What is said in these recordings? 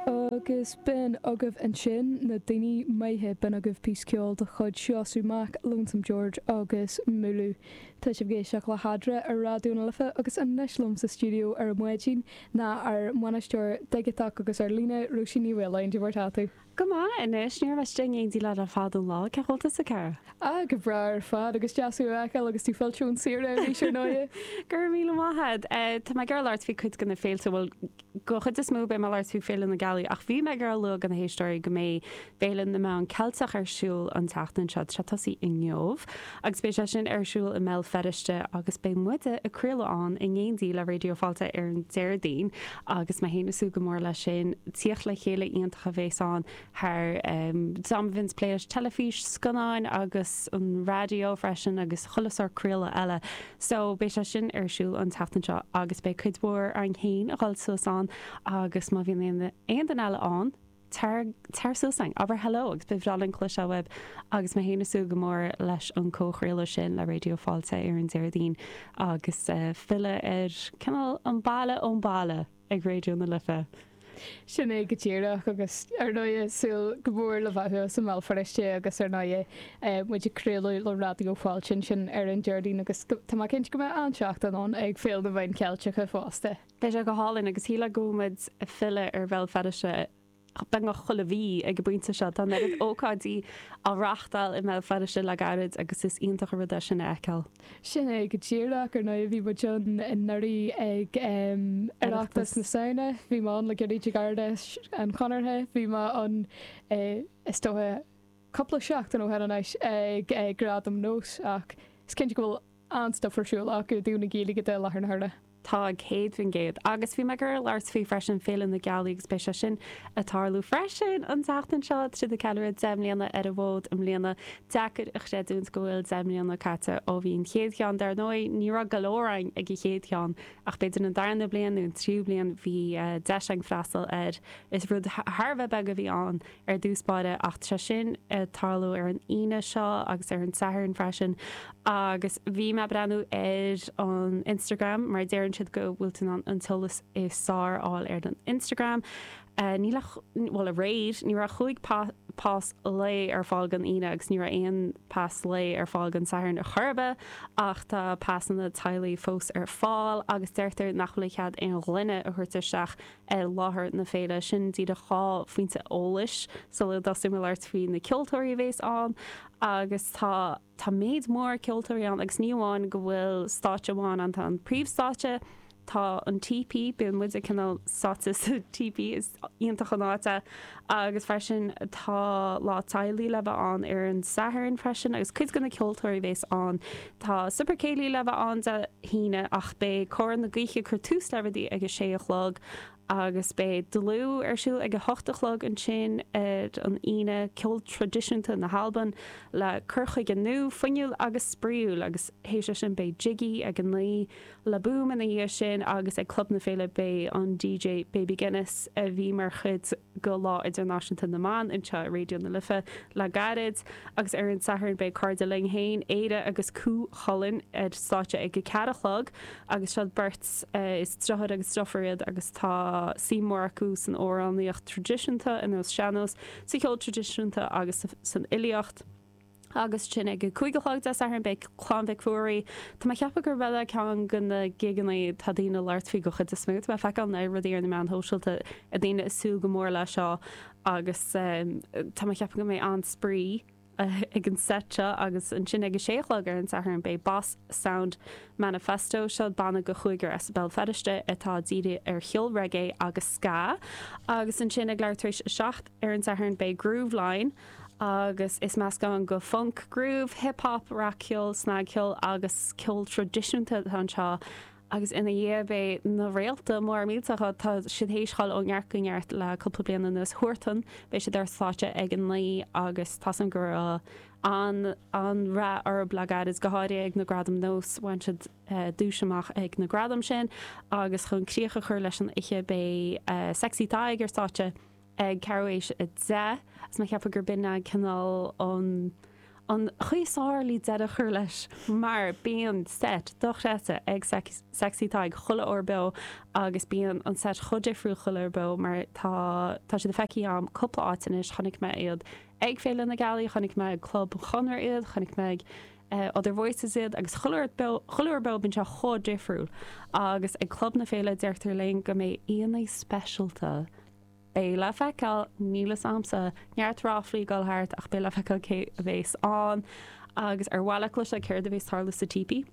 Agus b'in agaibh ansin na daoine maithe, b'in agaibh píosa ceoil de chuid Seosamh Mac, Lonesome George agus Múlú. Tá sibh ag éisteacht le hEadra ar Raidió na Life agus anois liom sa stiúideo ar an maidin ná ár mbainisteoir digiteach agus ar líne, Róisín Ní Mhaoláin. Cé mar atá tú? Go maith. Anois, ní raibh mise istigh in éindí leat ar feadh an lá, cén chaoi a bhfuil tusa, Cara? Ah, go breá ar fad, agus deas thú a fheiceáil agus tú fillte ón tsaoire arís, ar ndóighe. Go raibh míle maith a'd. Eh, tá mé ag gabháil a labhairt faoi cuid de na féilte, bhuel, den chuid is mó beidh mé ag labhairt faoi Féile na Gealaí, ach bhí mé ag gabháil a lua do na héisteoirí go mbeidh Féile na Meán Ceilteach ar siúl an tseachtain seo, tá sé ag tosaí inniu. agus beidh sé sin ar siúl i mBéal Feirste agus beidh muide ag craoladh ann in éindí le Raidió Fáilte ar an Déardaoin agus mé féin ag súil go mór leis sin. Tíocht le chéile iontach a bhéas ann d'éinne a bhíonns ag plé leis teilifís, scannáin agus an raidió freisin agus chuile shórt craoladh eile so beidh sé sin ar siúl an tseachtain seo agus beidh cuid mhór againn féin ag goil suas ann agus má bhíonn aon aon duine eile ann Tar, tar suas ann. Abair hello agus ba bhreá linn cloisteáil uaibh agus mé fhéin ag súil go mór leis an comhchraoladh sin le Raidió Fáilte ar an Déardaoin agus filleadh ar cineál an baile ón baile ag Raidió na Life. Sin é go díreach agus ar ndóigh súil go mór le bheith thuas i mBéal Feirste agus ar ndóigh muid ag craoladh le Raidió Fáilte ansin ar an Déardaoin agus tá mé cinnte go mbeidh an-tseachtain ann ag Féile na Meáin Ceilteacha fosta. Beidh sé go hálainn agus shílfeá go bhfuil muid ag filleadh ar Bhéal Feirste beagnach chuile mhí ag an bpointe seo. Tá an oiread ócáidí á reáchtáil i mBéal Feirste le gairid agus is iontach an rud é sin a fheiceáil. Sin é go díreach. Ar ndóigh, bhí muid anuraidh ag Oireachtas na Samhna, bhí mé ann le gairid ag Ard Fheis an Chonartha, bhí mé ann is dócha cúpla seachtain ó shin anois ag Gradaim Nós ach is cinnte go bhfuil an-stuif ar siúl acu i dtaobh na Gaeilge de i láthair na huaire. Tá, céad faoin gcéad Agus bhí mé ag goil a labhairt faoi freisin Féile na Gealaí agus beidh sé sin ag tarlú freisin an tseachtain seo, tá siad ag ceiliúradh 10 mbliana ar an bhfód i mbliana. Deacair a chreidiúint go bhfuil 10 mbliana caite ó bhí an chéad cheann. Dar ndóigh ní raibh go leor againn ag an chéad cheann ach b'fhéidir an darna bliain nó an tríú bliain bhí deis againn freastal air. Is rud thar a bheith beag a bhí ann. ar dtús báire ach tá sé sin ag tarlú ar an Aoine seo agus ar an Satharn freisin agus bhí mé ag breathnú ar an Instagram mar deireann siad go bhfuil tú in ann an t-eolas is fearr a fháil ar an Instagram ní raibh aréir ní raibh ach cúig pas lae ar fáil don Aoine agus ní raibh aon pas lae ar fáil don Satharn ar chor ar bith ach tá pasanna teaghlaigh fós ar fáil agus deirtear nach bhfuil cead aon ghloine a thabhairt isteach ar láthair na féile, sin díreach dhá phointe eolais sula dtosóidh mé labhairt faoi na ceoltóirí a bhéas ann agus tá, tá méid mór ceoltóirí ann agus ní amháin go bhfuil stáitse amháin ann, tá an príomhstáitse, tá an típí, bíonn muide cineál sáite sa típí, is iontach an áit é. agus freisin tá lá teaghlaigh le bheith ann ar an Satharn freisin agus cuid go na ceoltóirí bhéas ann tá Super Céilí le bheith ann Dé hAoine ach beidh Cór na Gaoithe cur tús le rudaí ag a sé a chlog agus beidh Dlù ar siúl ag a hocht a chlog ansin ar an Aoine ceol traidisiúnta na hAlban le cur chuige nua fuinniúil agus spraoiúil agus théis sin beidh Jiggy ag a naoi Le Boom ina dhiaidh sin agus ag Club na Féile beidh an DJ Baby Guinness a bhí mar chuid go Lá Idirnáisiúnta na mBan anseo i Raidió na Life le gairid agus ar an Satharn beidh cairde linn féin, Éire agus Cú Chulainn ar stáitse ag a ceathair a chlog agus siod beirt is driotháir agus driofúr iad agus tá suim mór acu san amhránaíocht traidisiúnta, ar nós sean-nós, sa cheol traidisiúnta agus san fhilíocht. Agus ansin ag a cúig a chlog Dé Sathairn beidh Clann Mhic Ruairí. Tá mé a cheapadh gurb é ceann de na gigeannaí atá daoine ag labhairt faoi den chuid is mó. Tá mé ag feiceáil na rudaí ar na meáin sóisialta, daoine ag súil go mór leis seo agus tá mé a cheapadh go mbeidh an-spraoi ag an seit seo. Agus ansin ag a sé a chlog ar an Satharn beidh Boss Sound Manifesto. Seo banna de chúigear as Béal Feirste atá dírithe ar cheol reggae agus ska. Agus ansin ag leathuair tar éis a seacht ar an Satharn beidh Grooveline. agus is meascán de func, groove, hip hop, rac-cheol, snagcheol agus ceol traidisiúnta atá anseo agus ina dhiaidh beidh na réalta móra millteacha. Tá siad théis a ghoil ó neart go neart le cúpla bliain anuas. Huartan beidh siad ar stáitse ag a naoi agus tá fhios a'm go raibh an-rath orthu le gairid is go háirithe ag na gradaim NÓS. Bhain siad duais amach ag na gradaim sin agus chun críoch a chur leis an oíche beidh Sexy Tadhg ar stáitse. ag ceathrú tar éis a deich, agus mé a cheapadh gur b'in a' cineál an, an chaoi is fearr le deireadh a chur leis mar bíonn seit dochreidte ag seic, Sexy Tadhg chuile uair beo agus bíonn an seit chomh difriúil chuile uair beo mar tá, tá siad feicthe a'm cúpla áit anois, chonaic mé iad ag Féile na Gealaí, chonaic mé ag Club an Chonradh iad, chonaic mé ag Other Voices iad agus chuile uair beo, chuile uair beo bíonn sé chomh difriúil agus ag Club na Féile deirtear linn go mbeidh aíonna speisialta, Beidh le feiceáil, níl fhios a'msa, neart ráflaí ag dul thart ach beidh le feiceáil cé a bhéas ann agus ar mhaith leat cloisteáil céard a bhéas tarlú sa típí?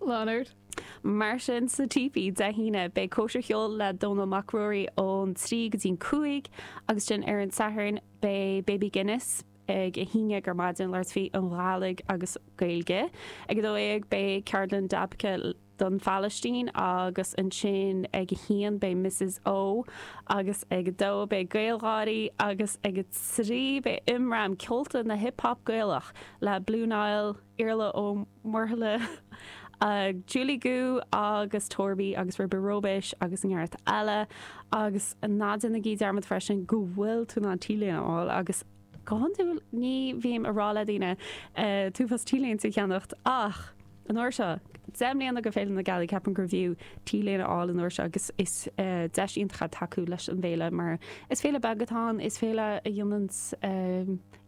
Lean ort. Mar sin sa típí Dé hAoine beidh cóisir cheoil le Dónal Mac Ruairí ón trí go dtí'n cúig agus ansin ar an Satharn beidh Baby Guinness ag a haon déag ar maidin labhairt faoin Ghàidhlig agus Gaeilge. Ag a dó dhéag beidh ceardlann dabke le. don Phalaistín agus ansin ag a haon beidh Misses O agus ag a dó beidh GaelGÁIRÍ agus ag a trí beidh Imram, Ceolta na Hip Hop Gaelach le Blue Niall, Iarla Ó Muirthile, Julie Goo agus Torby agus Ribe Róibéis agus neart eile agus ná déanaigí dearmad freisin go bhfuil tú in ann T-léine a fháil agus. Go hiondúil ní bhím a rá le daoine t-uafás T-léinte a cheannacht ach an uair seo, deich mbliana go Féile na Gealaí, ceapaim gurbh fhiú T-léine a fháil an uair seo agus is deis iontach é tacú leis an bhféile mar is féile beag atá ann, is féile a dhéananns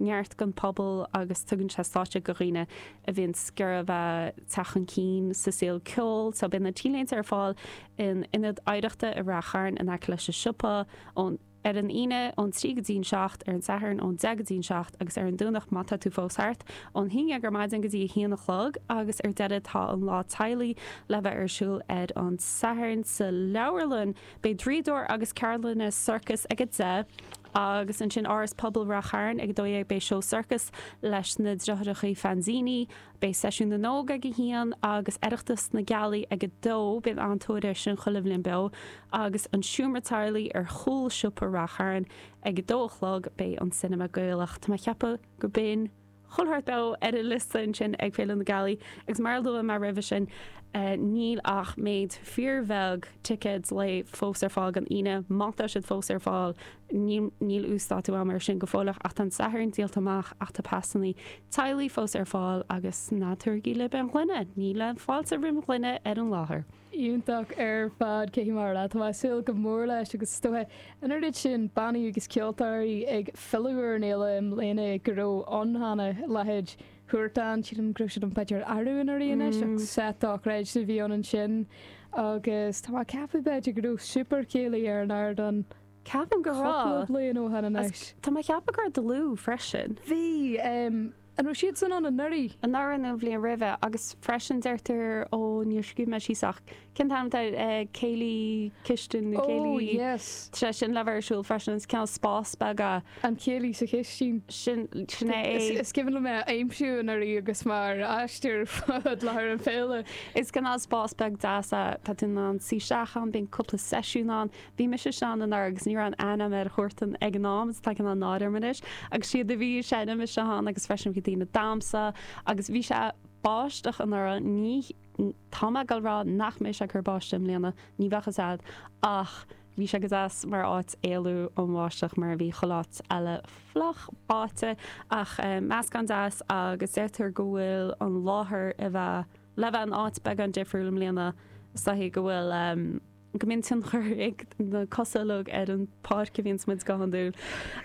neart don phobal agus tugann sé stáitse go dhaoine a bhíonns ag iarraidh a bheith ag teacht chun cinn sa saol ceoil so beidh na T-léinte ar fáil in Ionad Oidhreachta i Ráth Chairn in aice leis an siopa ón ar an Aoine ón trí go dtí'n seacht, ar an Satharn ón deich go dtí'n seacht agus ar an Domhnach, má tá tú fós thart, ón haon dhéag ar maidin go dtí a haon a chlog agus ar deireadh tá an Lá Teaghlaigh le bheith ar siúl ar an Satharn sa leabharlann. Beidh draíodóir agus ceardlanna sorcais ag a deich agus ansin Áras Pobail Ráth Chairn ag a dó dhéag beidh seó sorcais leis na Deartháireachaí Fanzini Beidh Seisiún na nÓg ag a haon agus Oireachtas na Gealaí ag a dó. Bíonn an-tóir air sin chuile bhliain beo agus an seomra teaghlaigh ar chúl siopa Ráth Chairn. Ag a dó a chlog beidh an cinema Gaelach. Tá mé ag ceapadh go b'in chuile shórt beo ar an liosta ansin ag Féile na Gealaí agus mar a luaigh mé roimhe sin níl ach méid fíor bheag ticéad lae fós ar fáil don Aoine, má tá siad fós ar fáil. Níl uasdátú agam air sin go fóilleach ach tá an Satharn díolta amach ach tá pasannaí teaghlaigh fós ar fáil agus ná tabhairigí libh aon ghloine, níl fáilte roimh ghloine ar an láthair. Iontach ar fad, cé mar a leá. Tá mé ag súil go mór leis agus is dóiche an oiread sin bannaí agus ceoltóirí ag filleadh ar an fhéile i mbliana go raibh ann cheana a leithéid Huartan. Sílim go raibh siad ann b'fhéidir arú anuraidh anois ach seit dochreidte a bhí ann ansin agus tá mé ag ceapadh b'fhéidir go raibh Super Céilí ar an ardán. Ceapaim go raibh. Cúpla bliain ó shin anois. Tá mé ag ceapadh go raibh dlúth freisin. Bhí. An raibh siadsan ann anuraidh? Anuraidh nó an bhliain roimhe agus freisin deirtear ó níor scríobh mé síos ach cén t-ainm atá air céilí cistin nó céilí. Ó yes. Tá sin le bheith ar siúl freisin agus cineál spás beag é. An céilí sa chistín. Sin, sin é. Is cuimhin liom é a aimsiú anuraidh agus mé ar aistear fud láthair na féile. Is cineál spás beag deas é. Tá tú in ann suí isteach ann, bíonn cúpla seisiún ann, Bhí mise ann anuraidh agus ní raibh aon aithne agam ar Huartan ag an am agus tá cineál náire orm anois agus siad a bhí ag seinm istigh ann agus freisin bhí daoine ag damhsa agus bhí sé báisteach anuraidh ní tá mé ag rá nach mbeidh sé ag cur báisteach i mbliana ní bheadh a fhios agat ach bhí sé go deas mar áit éalú ón bháisteach mar a bhí chuile áit eile fliuch báite ach meascán deas agus deirtear go bhfuil an láthair a bheith le bheith in áit beagán difriúil i mbliana sa chaoi go bhfuil Go minchin chuirfeadh na cosa lug ar an páirc a bhíonns muid go hiondúil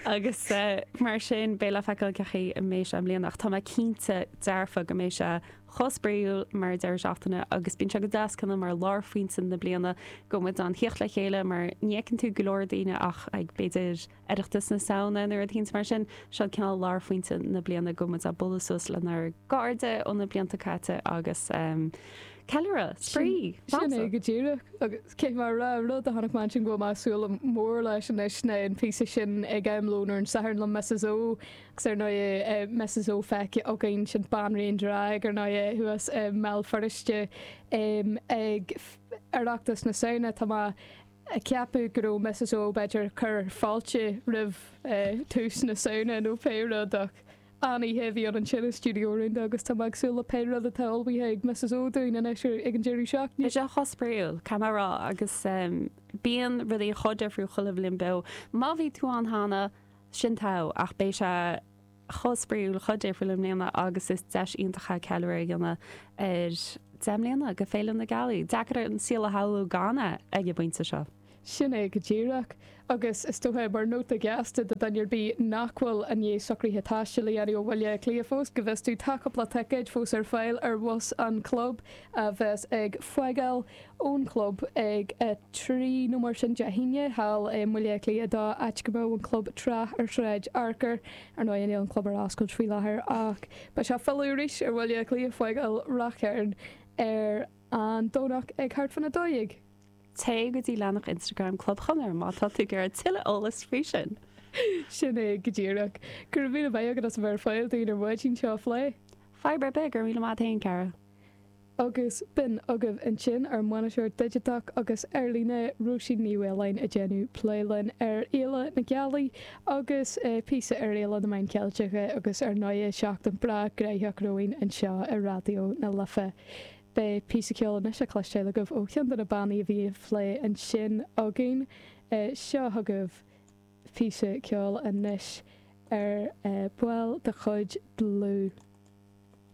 agus mar sin beidh le feiceáil cén chaoi a mbeidh sé i mbliana ach tá mé cinnte dearfa go mbeidh sé chomh spraíúil mar dheireadh seachtaine agus bíonn sé go deas cineál mar lárphointe na bliana go muid in ann theacht le chéile mar ní fheiceann tú go leor daoine ach ag b'fhéidir Oireachtas na Samhna nó rud eicínt mar sin. Seo cineál lárphointe na bliana go muid ag bualadh suas lenár gcairde óna blianta caite agus ceiliúradh, spraoi, damhsa! Sin é go díreach agus cé mar a rá an rud a chonaic mé ansin go bhfuil mé ag súil go mór leis anois ná an píosa sin ag am lóin ar an Satharn le Misses O agus ar ndóigh Misses O feicthe againn sin Banríon Drag ar ndóigh é thuas i mBéal Feirste ag Oireachtas na Samhna. Tá mé Ceapadh go raibh Mrs Ó b'fhéidir ag cur fáilte roimh tús na Samhna nó pé rud ach an-oíche a bhí ann ansin i stiúideo rúnda agus tá mé ag súil le pé rud atá ullmhaithe ag Mrs Ó dúinn anois ag an deireadh seachtaine. Bhí sé chomh spraíúil, tá mé ag rá, agus bíonn rudaí chomh difriúil chuile bhliain beo. Má bhí tú ann cheana, sin togha, ach beidh sé chomh spraíúil, chomh difriúil i mbliana agus is deis iontach é ceiliúradh a dhéanamh ar deich mbliana de Féile na Gealaí. Deacair an saol a shamhlú gan é ag an bpointe seo. Sin é go díreach. Agus is dóiche, mar nóta gasta do dhuine ar bith nach bhfuil i ndiaidh socruithe taistil a dhéanamh ó Bhaile Átha Cliath fós, go bhfios tú, tá cúpla ticéad fós ar fáil ar bhus an chlub a bheas ag fágáil ón chlub ag a trí nó mar sin Dé hAoine thall i mBaile Átha Cliath dó, áit a raibh an club tráth ar Shráid Fhearcair. Ar ndóigh níl an club ar oscailt faoi láthair ach beidh sé ag filleadh arís ar Bhaile Átha Cliath fágáil Ráth Chairn ar an Domhnach ag thart faoina dó dhéag. Téigh go dtí leathnach Instagram Club Chonradh má tá tú ag iarraidh tuilleadh eolas faoi sin. Sin é go díreach. Gura míle maith agat as a bheith ar fáil dúinn ar maidin seo a phlé. Fadhb ar bith, gura míle maith agat féin, cara. agus b'in agaibh ansin ár mbainisteoir digiteach agus ar líne Róisín Ní Mhaoláin ag déanamh plé linn ar Fhéile na Gealaí agus píosa ar Fhéile na Meáin Ceilteacha agus ar ndóigh seachtain breá gnóthach romhainn anseo ar Raidió na Life. Beidh píosa ceoil anois le cloisteáil agaibh ó cheann de na bannaí a bhí á phlé ansin againn. Seo chugaibh píosa ceoil anois ar baill de chuid Dlúth.